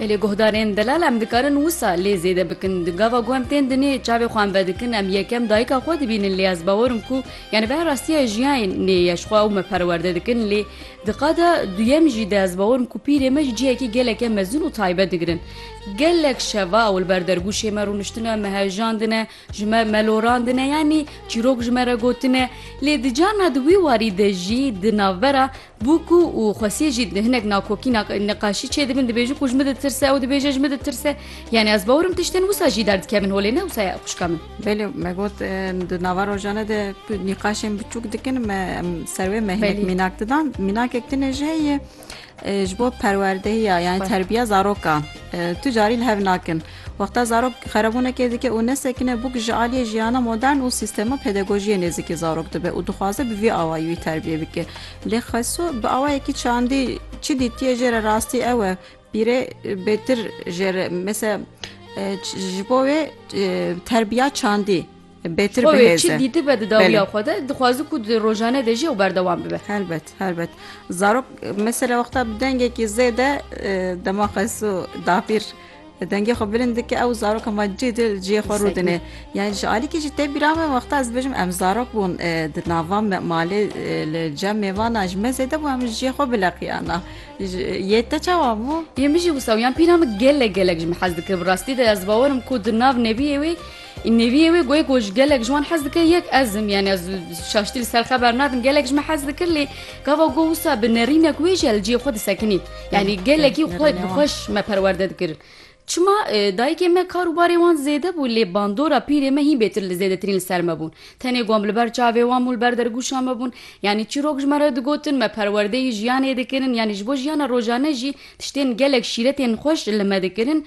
Belê guhdarên delal em dikarin wisa lê zêde bikin. Di gava ku em tên dinê çavê xwe em vedikin em yekem dayika xwe dibînin lê ez bawerim ku yani be rastiya jiyayên nê ye ji xwe ew me perwerde dikin lê di qada duyem jî de ez bawerim ku pîrê me ji cihekî geleke mezin û taybet digirin. Gelek şeva ew li ber dergûşê me rûniştine me hejandine ji me melorandine yanî çîrok ji me re gotine lê di carna di wî warî de jî di navbera Bû ku û Xwesiyê jî hinek nakokî neqaşî çêdibin dibêjin ku ji min ditirse ew dibêje ji min ditirse yanî ez bawer im tiştên wisa jî derdikevin holê ne wisa ye xwişka min. Belê me got di nava rojane de tu nîqaşên biçûk dikin me em ser wê me hinek mînak didan mînakek din jî heye ji bo perwerdehiya yan terbiya zarokan tu carî li hev nakin. Wexta zarok xerebûnekê dike û nesekine bûk ji aliyê jiyana modern û sîstema pedagojiyê nêzîkî zarok dibe û dixwaze bi vî awayî wî terbiyê bike. Lê Xesu bi awayekî çandî çi dîtiye jê re rastî ew e, pîrê bêtir jê re mesela ji bo wê terbiya çandî, bêtir bihêze. Xwe wê çi dîtibe di dawiya xwe de dixwazi ku di rojane de jî ew berdewam bibe. Helbet helbet zarok mesela wexta bi dengekî zêde dema xesu dapîr dengê xwe bilind dike ew zarok hema cî dil ciyê xwe rû dine yan ji alîkî jî tê bîra me wexta ez bijim em zarok bûn di nava me malê li cem mêvana ji me zêde bû em ji ciyê xwe bileqiyana yê te çawa bû yê min jî wisa yan pîra min gelek gelek ji min hez dikir bi rastî de ez bawerim ku di nav nebiyê wê Neviyê wê goyê ku ji gelek ji wan hez dike yek ez im yani ez şaştî li ser xeber nadim gelek ji me hez dikir lê gava got wisa bi nerînek wê jî li cihê xwe disekinî yani gelekî xwe bi xweş me perwerde dikir. Çima dayikê me kar û barê wan zêde bû lê bandora pîrê me hîn bêtir li zêdetirîn li ser me bûn. Tenê gom li ber çavê wan bûn li ber dergûşa me bûn yanî çîrok ji me re digotin me perwerdeyî jiyanê dikirin yanî ji bo jiyana rojane jî tiştên gelek şîretên xweş li me dikirin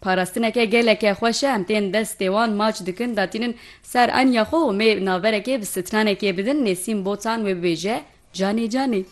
Parastineke geleke xweş e em tên destê wan maç dikin datînin ser anya xwe û mê naverekê bi stranekê bidin Nêsîm Botan wê bibêje Canê canê.